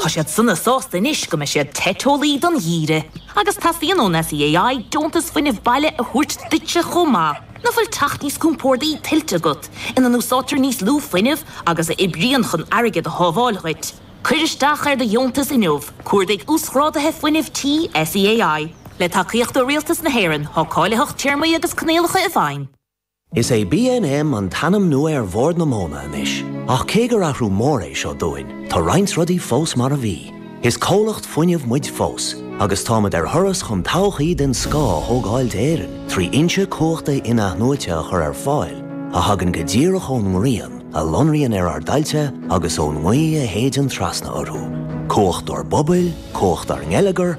Tá siad sona sásta anois go mbeidh siad te teolaí don gheimhreadh. Agus teastaíonn ón SEAI deontas fuinnimh baile a thabhairt duitse chomh maith. Nach bhfuil teach níos compórdaí tuillte agat, ina n-úsáidtear níos lú fuinnimh agus a oibríonn chun airgead a shábháil dhuit? Cuir isteach ar do dheontas inniu, cuardaigh Uasghráduithe Fuinnimh Tí SEAI. Le tacaíocht ó Rialtas na hÉireann, tá cáilitheacht, téarmaí agus coinníollacha i bhfeidhm. Is é BNM an t-ainm nua ar Bhord na Móna anois, ach cé gur athrú mór é seo dúinn, tá roinnt rudaí fós mar a bhí. Is comhlacht fuinnimh muid fós, agus táimid ar thuras chun todhchaí den scoth a thógáil d'Éirinn trí fhoinse cumhachta in-athnuaite a chur ar fáil a thagann go díreach ón ngrian, a lonraíonn ar ár dtailte agus ón ngaoth a shéideann trasna orthu. Cumhacht ár bpobail, cumhacht ár ngeilleagar,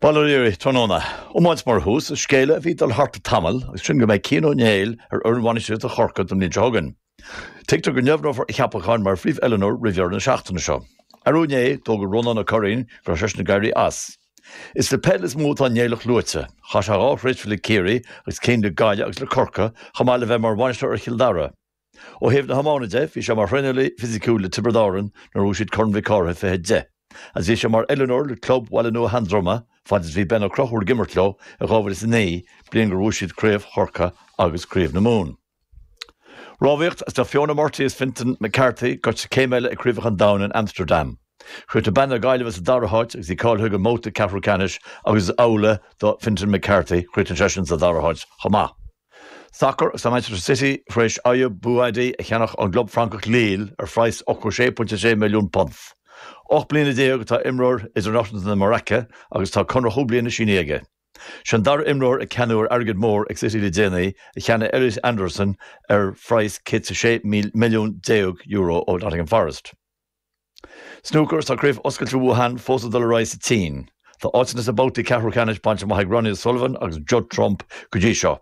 Bail ó Dhia oraibh tráthnóna. Iomáint mar thús is scéala a bhí ag dul thart le tamall agus sin go mbeidh Cian Ó Néill ar fhoireann bhainistíochta Chorcaigh don bhliain seo chugainn. Tuigtear go ndeimhneofar a cheapachán mar phríomhoiliúnóir roimh dheireadh na seachtaine seo. Arú inné, d'fhógair Rónán Ó Curraoin go raibh seisean ag éirí as. Is le peil is mó atá an Néilleach luaite. Chaith sé dhá thréimhse le Ciarraí agus ceann le Gaillimh agus le Corcaigh, chomh maith le bheith mar bhainisteoir ar Chill Dara. Ó thaobh na hiomána de, bhí sé mar thraenálaí fisiciúil le Tiobraid Árann nuair a bhuaigh siad Corn Mhic Cárthaigh 2010, agus bhí sé mar oiliúnóir le club Bhaile Nua Sheandroma fad is a bhí Ben Ó Conchúir ag imirt leo i 2009, bliain gur bhuaigh siad Craobh Chorca agus Craobh na Mumhan. Rámhaíocht, is tá Fiona Murtagh is Fintan McCarthy gaibhte céim eile ag Craobhacha an Domhain in Amsterdam. Chríochnaigh bean na Gaillimhe sa dara háit agus í cáilithe don bhabhta ceathrú ceannais agus is amhlaidh do Fintan McCarthy, chríochnaigh seisean sa dara háit chomh maith. Sacar, is tá Manchester City tar éis Ayyoub Bouaddi a cheannach ón gclub Francach Lille ar phraghas £86.6 milliún. Ocht mbliana déag atá imreoir idirnáisiúnta Mharacó agus tá conradh cúig bliana sínithe aige. Sé an dara imreoir atá ceannaithe ar airgead mór ag City le déanaí, a cheannaigh Elliot Anderson ar phraghas 116 milliún euro ó Nottingham Forest. Snúcar, Tá Craobh Oscailte Wuhan fós ag dul ar aghaidh sa tSín. Tá áiteanna sna babhtaí ceathrú ceannais bainte amach ag Ronnie O'Sullivan agus Judd Trump go dtí seo.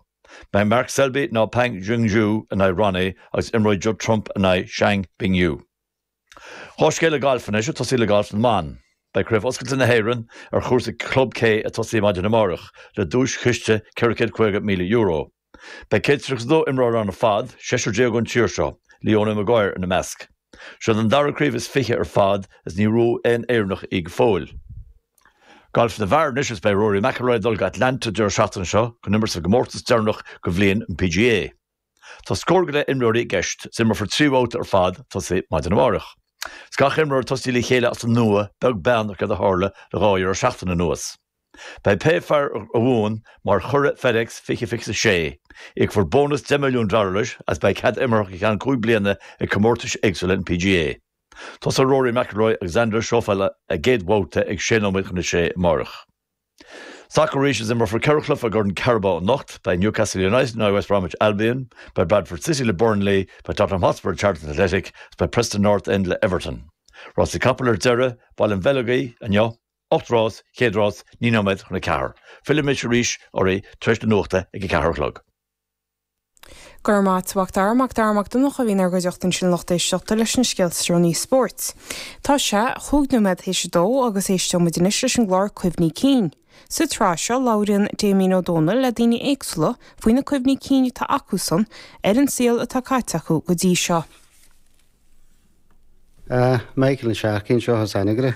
Beidh Mark Selby nó Pang Junxu in aghaidh Ronnie agus imreoidh Judd Trump in aghaidh Chang Bingyu. Dhá scéal gailf anois, ag tosaí le gailf na mban. Beidh Craobh Oscailte na hÉireann ar chúrsa Club K ag tosaí maidin amárach, le duaischiste €450,000. Beidh 132 imreoir ann ar fad, seisear déag ón tír seo, Leona Maguire ina measc. Seo an dara craobh is fiche ar fad agus níor bhuaigh aon Éireannach í go fóill. Gailf na bhfear anois agus beidh Rory McIlroy ag dul go Atlanta an deireadh seachtaine seo chun imirt sa gcomórtas deireanach de bhliain an PGA. Tá scór go leith imreoirí i gceist agus imreofar trí bhabhta ar fad ag tosaí maidin amárach. Agus gach imreoir ag tosaí le chéile as an nua, beag beann ar céard a tharla le dhá dheireadh seachtaine anuas. Beidh pé fear a bhuann mar churadh FedEx 2026, íocfar bónas deich milliún dollar leis agus beidh cead imeartha go ceann cúig bliana ag comórtais éagsúla an PGA. Tosóidh Rory McIlroy agus Xander Schauffele a gcéad bhabhta ag sé nóiméad chun a sé amárach. Sacar arís, is imreofar ceithre chluiche i gCorn Carabao anocht. Beidh Newcastle United in aghaidh West Bromwich Albion, beidh Bradford City le Burnley, beidh Tottenham Hotspur Charlton Athletic agus beidh Preston North End le Everton. Rásaí capall ar deireadh, Baile an Bheileogaigh inniu. Ocht rás, chéad rás, naoi nóiméad chun a ceathair. Fillfimid arís oraibh tar éis na nuachta ag a ceathair a chlog. Go raibh maith agat a Mhac Dara, Mac Dara Mac Donncha a bhí inár gcuideachta ansin lucht éisteachta leis na scéalta is deireanaí spóirt. Tá sé, chúig nóiméad th'éis a dó agus éisteoidh muid anois leis an gclár Cuimhní Cinn. Sa tsraith seo labhraíonn Damien Ó Dónaill le daoine éagsúla faoi na cuimhní cinn atá acusan ar an saol atá caite acu go dtí seo. I gclár na seachtaine seo as Anagaire.